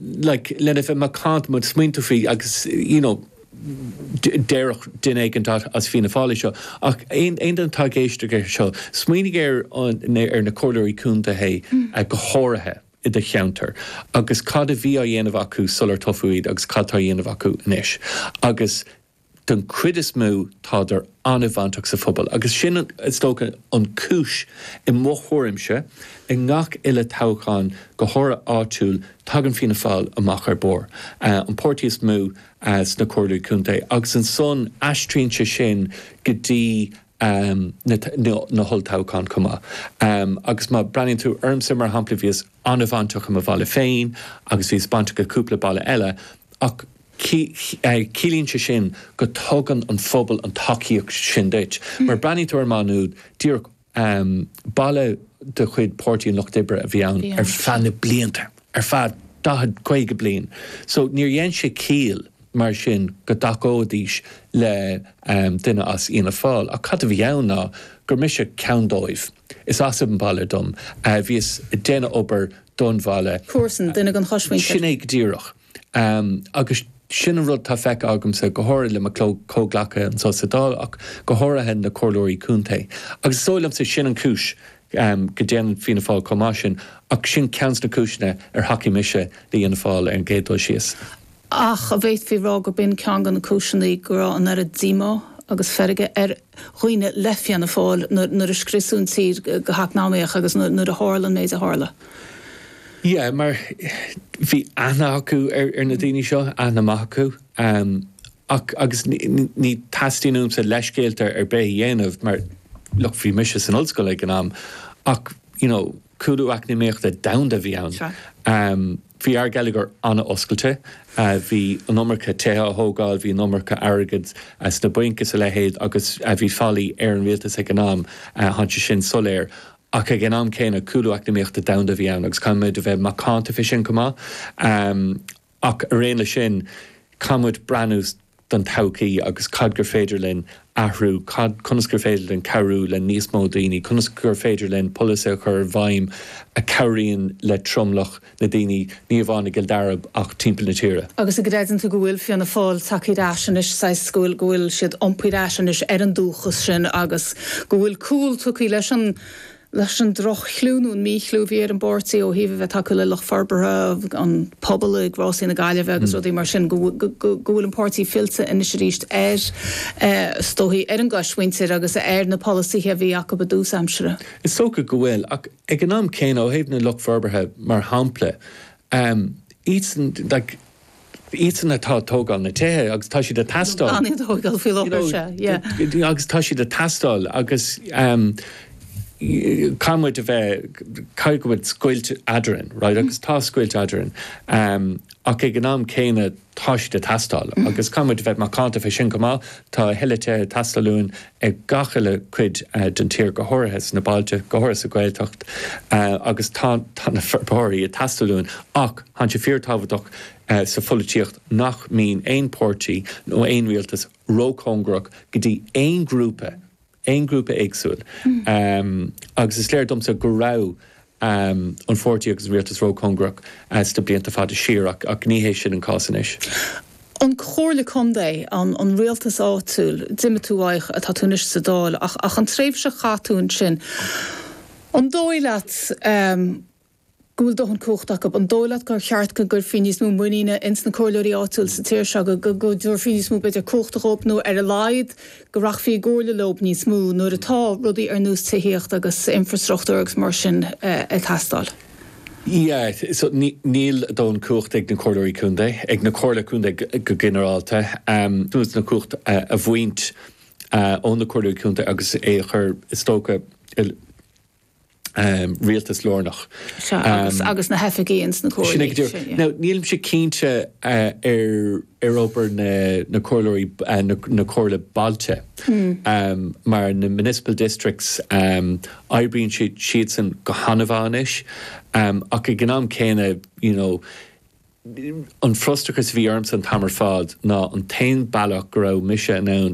like, lena bheith macánta, má smaoiníonn tú faoi agus, you know, déarfadh duine éigin as Fianna Fáil é seo, ach aon duine atá ag éisteacht leis seo, smaoinigh ar na Comhairleoirí Contae go háirithe i do cheantar agus cad a bhí á dhéanamh acu sular toghadh iad agus cad atá á dhéanamh acu anois agus, don chuid is mó táid an-bhainteach sa phobal agus sin is dócha an cúis, i mo thuairimse, i ngach uile toghchán, go háirithe áitiúil, tagann Fianna Fáil amach ar barr, an páirtí is mó sna Comhairlí Contae agus ansan aistríonn sé sin go dtí um na holltoghchán chomh maith. um Agus má breathnaíonn tú ormsa, mar shampla, bhíos an-bhainteach i mo bhaile féin agus bhíos bainteach i gcúpla baile eile ach ciallaíonn sé sin go dtugann an phobal an tacaíocht sin duit. Mar má bhreathnaíonn tú ar Maigh Nuad díreach, um baile de chuid Páirtí an Lucht Oibre a bhí ann ar feadh na blianta, ar feadh daichead, caoga bliain so níor dhein sé ciall mar sin go dtacóidís le duine as Fhianna Fáil ach cad a bhí ann ná gur mise ceann dóibh. Is as an bhaile dom, bhíos ag déanamh obair don bhaile. comharsan, duine den choismhuintir. Sin é go díreach agus sin an rud atá feicthe agamsa go háirithe le mo chomhghleacaithe anseo sa Dáil ach go háirithe na Comhairleoirí Contae agus is dóigh liomsa sin an chúis go ndéanann Fianna Fáil chomh maith sin, ach sin ceann de na cúiseanna ar thacaigh mise le Fhianna Fáil ar an gcéad dul síos. Ach a bhféadfaí a rá gur b'in ceann de na cúiseanna go raibh an oiread díomá agus feirge ar dhaoine le Fianna Fáil nuair a scriosadh an tír go heacnamaíoch agus nuair a tharla an méid a tharla? Yeah, mar bhí aithne acu ar na daoine seo, aithne mhaith acu. ann. Ach, agus ní theastaíonn uaimse leithscéalta ar bith a dhéanamh mar, look, bhí mise san ollscoil ag an am ach, you know, cúlú eacnamaíochta domhanda a bhí ann. Bhí ár geilleagar an-oscailte, bhí an iomarca tithe á thógáil, bhí an iomarca airgid sna bainc is a leithéid agus bhí faillí ar an rialtas ag an am, tá sé sin soiléir. Ach ag an am céanna, cúlú eacnamaíochta domhanda a bhí ann agus caithfidh muid a bheith macánta fé sin chomh maith. Ach araon leis sin, caithfimid breathnú don todhchaí agus cad gur féidir linn athrú, cad, conas gur féidir linn cabhrú le níos mó daoine, conas gur féidir linn polasaithe a chur i bhfeidhm a cabhraíonn le tromlach na daoine, ní amháin i gCill Dara ach timpeall na tíre. Agus an gcreideann tú go bhfuil Fianna Fáil tagtha ar ais anois, saghas, go bhfuil, go bhfuil siad iompaithe ar ais anois ar an dúchas sin agus go bhfuil cúl tugtha leis an leis an droch-chlú nó an mí-chlú a bhí ar an bpáirtí ó thaobh a bheith tacúil le lucht forbartha an phobail ag Rásaí na Gaillimhe agus rudaí mar sin, go bhfuil an páirtí fillte anois arís ar, is dóichí, ar an gcoismhuintir agus ar na polasaithe a bhí acu i dtús aimsire. Is dócha go bhfuil, ach ag an am céanna, ó thaobh na lucht forbartha, mar shampla, iadsan, iadsan atá ag tógáil na tithe agus tá siad ag teastáil, agus tá siad ag teastáil agus caithfidh muid a bheith, caithfidh muid scoilt eadrainn, right, agus tá scoilt eadrainn ach ag an am céanna tá siad ag teastáil agus caithfidh muid a bheith macánta fé sin chomh maith, tá a thuilleadh tithe ag teastáil uainn i gach uile cuid den tír, go háirithe sna bailte, go háirithe sa Ghaeltacht agus tá na forbairí ag teastáil uainn ach tá sé fíor-tábhachtach sa pholaitíocht nach mbíonn aon páirtí nó aon rialtas ró-chóngarach go dtí aon ghrúpa, aon ghrúpa éagsúil agus is léir domsa go raibh an pháirtí agus an rialtas ró-chóngarach sna blianta fada siar ach ní hé sin an cás anois. An Chomhairle Contae, an rialtas áitiúil, d'imigh tú uaidh, tá tú anois sa Dáil ach an tréimhse a chaith tú ansin, an dóigh leat go bhfuil dóthain cumhachta acu, an dóigh leat gur cheart go gcuirfí níos mó muiníne ins na comhairleoirí áitiúil sa tír seo, go dtabharfaí níos mó b'fhéidir cumhachta dhóibh nó ar a laghad go rachfaí i gcomhairle leob níos mó nuair atá rudaí ar nós tithíocht agus infreastruchtúr agus mar sin ag teastáil. Yeah, so níl dóthain cumhachta ag na Comhairleoirí Contae, ag na Comhairle Contae go ginearálta, suas na cumhacht a bhaint ó na Comhairleoirí Contae agus é a chur, is dócha, i. rialtas lárnach. Sea, agus, agus na hoifigigh ins na comhairlí. Sin é go díreach. Sin, yeah. Now, nílimse cinnte ar, ar obair na, na comhairleoirí, na, na comhairle bailte. Mar na municipal districts, oibríonn siad, siadsan go han-mhaith anois. Ach ag an am céanna, you know, an frustrachas a bhí ormsa an t-am ar fad ná an t-aon bealach go raibh mise in ann